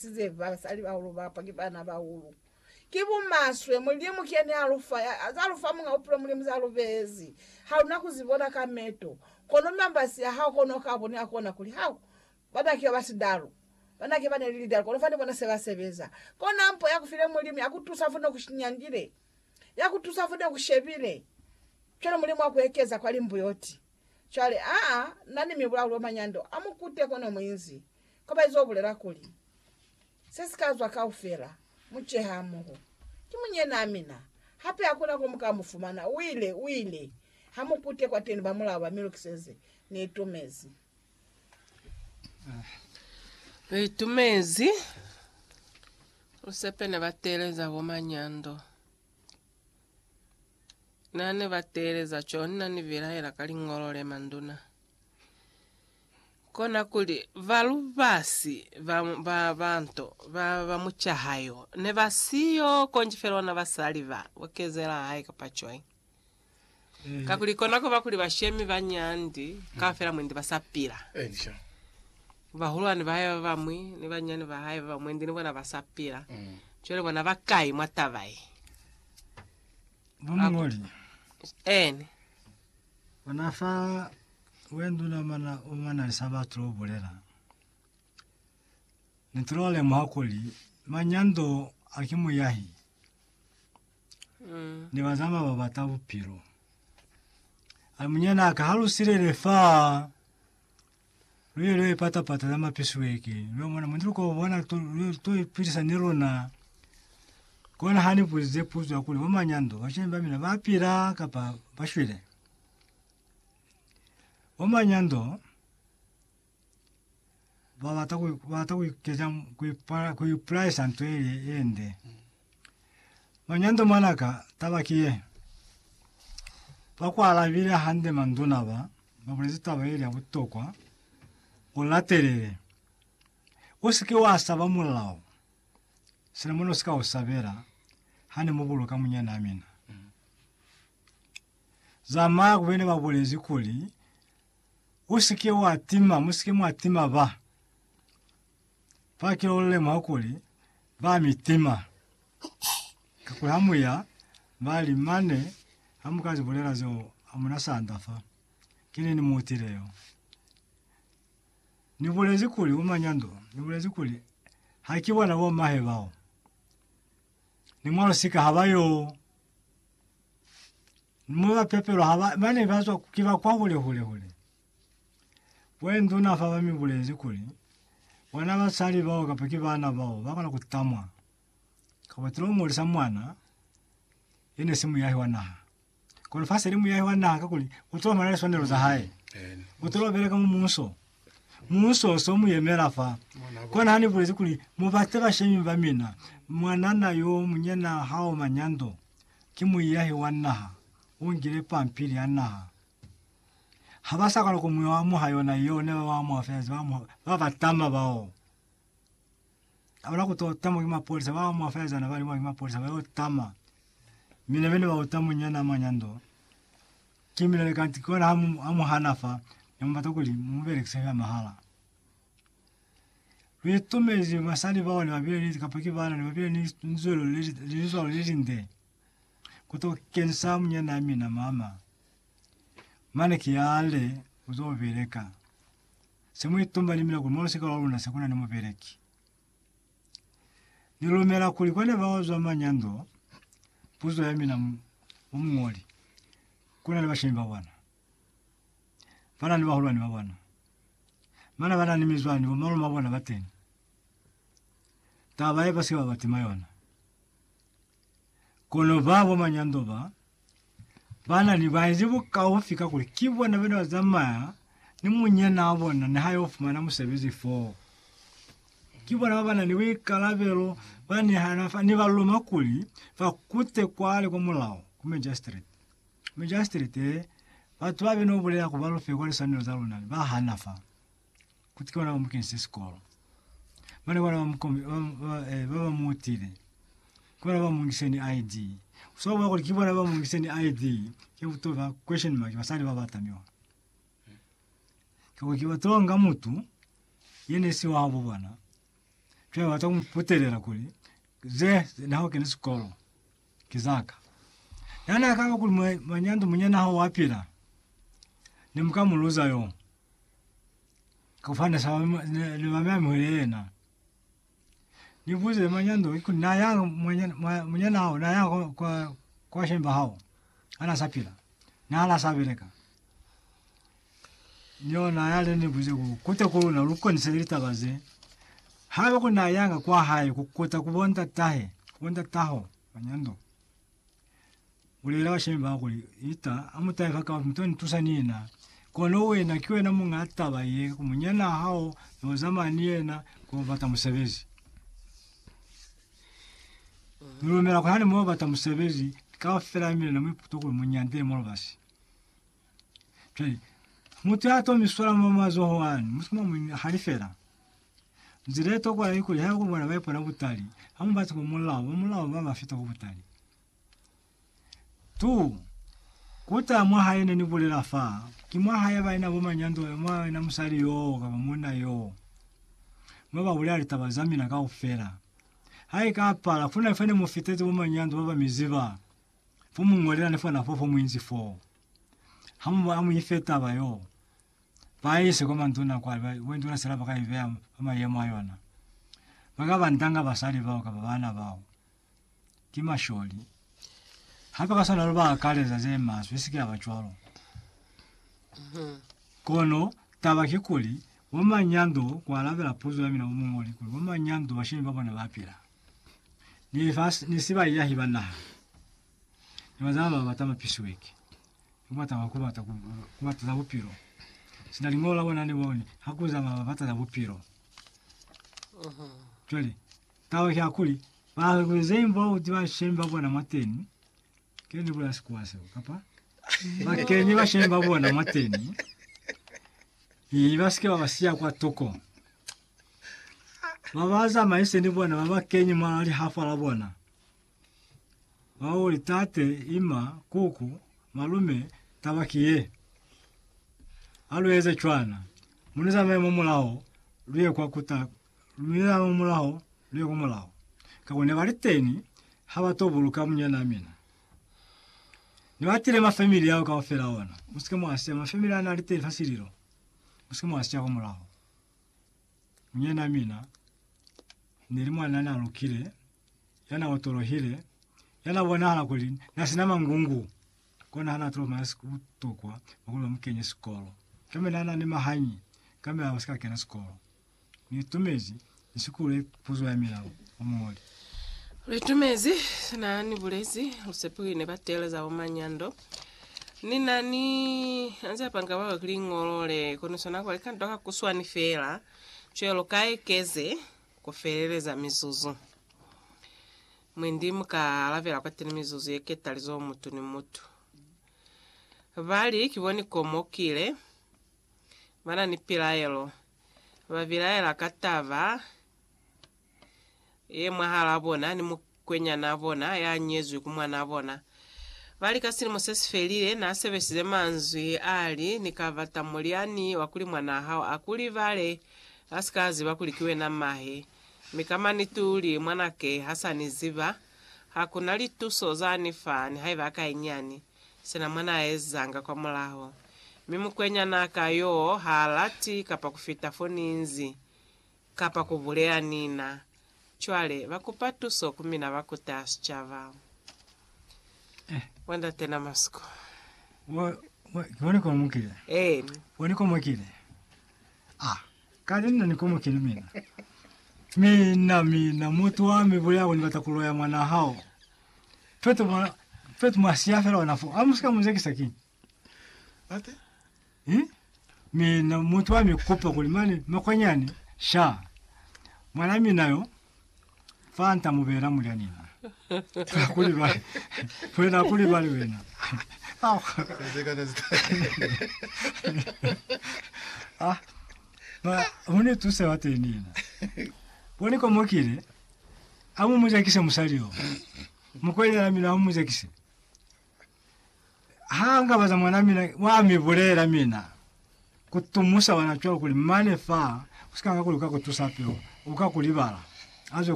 size basali bahulu bapa ki bana bahulu ki bumaswe mulimu ki yene alufa zalufa munga bupilo mulimu zalubezi haluna kuzibona ka meto kono mambasi a hao kono ka bone akona kuli hau bana kiba ba sidalu bana kiba ne lidalu kono fani bona seba sebeza kona mpo ya kufile mulimu ya kutusa fune kushinyangile ya kutusa fune kushebile cwale mulimu wa kuekeza kwa limbuyoti cwale aa nani mibulaulo manyando amukute kono muinzi Koba izo bulela kuli, Se si ka zwa kaufela, mu ceha hamoho. Ki munyenaa mina. Hape hakuna ko mu ka mu fumana. U ile, u ile. Ha mu kute kwateni bamulaho ba mi lukiseze. Ni itumezi. Ni itumezi. Musepe ne ba teeleza bo manyando. Na ne ba teeleza cona ni bilaela ka Liñolo le manduna. Kona kuli, ba lubasi ba, ba, ba nto, ba, ba mucaha yo, ne ba siyo, konji fela ona basali ba, bo kezela hae kapa cwañi. Kakuli kona kuba kuli bashemi ba nyandi kaufela mwendi ba sa pila. Elisha. Bahulwani ba hae ba bamwi, ni banyani ba hae ba bamwi, mwendi ni bona ba sa pila. Cwale bona ba kai mwa taba ye? Bo muñoli, Eni. bona fa We nduna mana o mana li sa batu lo bulela. Ne tu lo lemuha kuli mañi ya ndo a ki muyahi mm. ni bazama ba bata bupilo. A munyana aka ha lu silele fa lu ye lu pata pata za mapisweke lu mona mundi lu ko bona to lu to ipilisa ni lona kona hani pulize puzo ya kuli bo manyando ba shemba mina ba pila kapa ba shwile Bomanyando babata babata kuikeza kuipala kuipulaisa nto yeye yende. Manyando mwanaka taba kiye bakwalabile hande manduna ba babulezi taba ye ya butokwa ulatelele useke wasaba molao sina mona usika usabela hane muboloka munyana mina. za maa kube ne ba bulezi kuli, U si ke wa tima, mu si ke mwa tima ba. Fa kilo lu lemuha kuli ba mi tima. Kakuli ha mu ya, ba li, Mane, ha mu ka zi bulela zeo, hamuna sanda fa. Ki nini mu utile yo? Ni bulezi kuli, Bomanyando, ni bulezi kuli, Ha ki bona bo mahe bao. Ni mwa lusika ha ba yo. Mo ba pepelwa ha ba, ba ne ba zwa ki ba kwa hule hule hule. Bo enduna fa ba mi bulezi kuli, Bona basali bao kapa ki bana bao ba kona ku tamwa, kapa ba tilo ngolisa mwana ye ne si muyahi wa naha. Kono fa se li muyahi wa naha kakuli u tilo ba na le swanelo za hae. U tilo beleka mu muuso. Muuso u so mu yemela fa. Kona ha ni bulezi kuli, Mu bate bashemi ba mina, mwanana yo munyena ha o manyando. Ki muiyahi wa naha, u ngile pampili ya naha. Ha ba sa kala ku mu amuha yona yeo ne ba ba amuha fela, ze ba amuha ba ba tama bao. Ha ba na ku to tamwa ki mapolisa, ba amuha fela ze na ba li mwa ki mapolisa ba yo tama. Mina be ni ba uta munyana a manya ndo. Ki mina ne ka nti kona ha mu amuhana fa, ne mu bata kuli mu mu belekise fela mahala. Lu itumezi basali bao ne ba bile ni, kapa ki baana, ne ba bile ni linzwelo le, linzwalo le linde ku to kenisa munyanaa mina mama. Mane ki yale, U zo beleka. Se mu itumba ni mina kuli mwa lusika lwa luna se ku na ni mubeleki. Ni lumela kuli kwa ne ba zwa manyando, puzo ya mina, mu, mu muñoli, ku na ni bashemi ba bona. Bana ni bahulwani ba bona. Bana bana ni mizwani, bo malume ba bona bateñi. Taba ye basike ba ba tima yona. Kono ba bo manyando ba, bana ni baezi bukaufi kakuli ki bona bene ba zamaya ni munyina wa bona niha yo fumana musebezi foo. Ki bona ba bana ni buikalabelo ba nihana fa ni ba luma kuli ba kute kwale kwa mulao, ku magistrate. Majasitirete, Batu babe no bulela ku ba lufe kwa liswanelo za luna ne ba hana fa kuti ki bona ba mu kenise sikolo. Mane bona ba mu kome, ba, ba, eh, ba ba mu utile. Ki bona ba mu ngise ni ID. Uswa bua kuli ki bona ba mu ngise ni ID, ke buto ba question mark basali ba bata miola. Kakuli ki ba tonga mutu ye ne si wabo bona. Cwale ba bata ku mu putelela kuli ze na ho kene sikolo. Ki za ka. Na n'a kaba kuli, Mwa, mwa nyanto munyana hao wa pila, ne mu ka mu luza yo. Ka kufana ni sa ne, ne ba mi amuhile yena. Ni buze mwa nyanto, ki kuli, Na yanga munyana, mwa, munyana hao, na yanga kwa, kwa, kwa shemba hao, ha n'a sa pila? Na la sa beleka. Niona yale ni buze ku kuta ku luna lu konisele litaba ze. Haiba ku na yanga kwa hae ku kuta ku bo ndatahe, bo ndataho ba nyando, bulela bashemi ba kuli, Ita, amutahe fa kapa muto ni tusa ni na. Kono wena ki wena munga taba ye, ku munyana hao yo zamaya ni yena ku yo bata musebezi. Ni lumela kuli hane mu yo bata musebezi, kaufela mine ne mu iputa kuli mu nyande mo lubasi. Cwale, mutu ya to mi swala mwa mazoho ani, mutu mwa mwi hali fela. Nzila ye tokwa ya ikuli, haiba ku bona ba ipona butali, ha mu bati ku mulao, ba mulao ba ba fita ku butali. Tu, kuta mwa hae ne ni bulela fa, ki mwa hae ba ina bo manyando, mwa ina musali yoo kapa munna yoo, mwa ba bulela litaba za mina kaufela. Ha i ka pala, kuna fa ne mu fitezi bo manyando ba ba mi ziba, Bo mu ñolela ni fona fo fo mu inzi foo. Ha mu ba mu ife taba yoo, ba ise kwa manduna kwale, ba bo nduna sela ba ka i beya fa mayemo a yona. Ba ka ba ndanga basali bao kapa baana bao. Ki masholi. Hape ka swana lu ba akaleza ze maswe, i si ke ya ba cwalo. Kono taba kikuli, bo manyando, ku alabela puzo ya mina bo muñoli, kuli bo manyando bashemi ba bona ba pila. ni lifasi ni si baiahi ba naha ni bazala ba bata mapisiweki ni kubata ba kubata ku kubata za bupilo sina lingolo la bona ni boni ha ku zama ba bata za bupilo jwale taba ya kuli ba kuzeng ba uti ba sheng ba bona mwateni ke ni bula sikuwa seo kapa ba kenye ba sheng ba bona mwateni i ba sike ba ba siya kwa toko ba ba zamaise ni bona ba ba kenye mwa lihafa la bona, ba o li, Tate, ima, kuku, malume, taba ki ye. Ha lu eze cwana, mi lu zamaye mwa mulaho, lu ye kwa kuta, mi lu zamaye mwa mulaho, lu ye kwa mulaho. Kako ne ba li teni, ha ba to buluka munyanaa mina. Ne ba tile ma family ao kaufela ona. Musike mwa siya ma family a na li teni fa sililo. Musike mwa siya kwa mulaho. Munyina mina ni li mwan'a na lukile, ya na otolohile, ya na bonahala kuli na sina mangungu, kona ha na tolo maya siku butokwa bwa kuli ba mu kenye sikolo. Kambe na na ni mahanyi, kambe a si ka kena sikolo. Ni itumezi ni sikule puzo ya mina, Muñoli. Lu itumezi sina ni bulezi, lu sepile ne ba teeleza bo Manyando. Ni na ni anzia panga baba kuli ngolole kono sona kwa likando ka kuswani fela cwelo ka ekeze ku feleleza mizuzu. Mwendi mu ka alabela kwateni mizuzu ye ketalizo mutu ni mutu. Ba li, Ki bo ni komokile, ba na ni pilaelo, ba bilaela ka taba ye mwahalaa bona ni mukwenyanaa bona ya nyezwi ku mwanaa bona. Ba li ka silimo se si felile, na sebesize manzwi a li, Ni ka bata mulyani wa kuli mwanaa hao a ku libale, a si ka ziba kuli ki wena mahe. Mi ka maniti u li, Mwanake ha sa ni ziba, ha ku na lituso za ni fa, nihaiba a ka inyani. Sina mwa na ezanga kwa mulaho. Mi mukwenyanaa ka yoo ha lati kapa ku fita fo ni nzi. Kapa ku buleya nina. Cwale, ba kupa tuso ku mina ba kuta sicaba. Mwa ndate na masiku. Mwa, mwa, ki mwa ni komokile. Eeni. Mwa ni komokile. Ah, kale nna ni komokile mina. Mina, mina, mutu wa mi buleya ku ni bata ku loya mwa naha o. Petu mwa, petu mwa siya fela ona foo. Amu sika mu zekisa kiñi? Ate. Hmm? Mi na mutu ami kupa kuli mane makwanyani sha. Mwana mina yo fa nta mubela mulya nina. Kuli ba wena kuli bali wena. Au. Ah. Ba hune tuse wa tenina. Boni komokile. Amu mujakise musali yo. Mukwanyana mina amu mujakise. Ha nga baza mwana mina, wa mi bulela mina ku tumusa wana cwalo kuli mane fa, usika nga kuli uka ku tusa peo, uka ku libala. Azo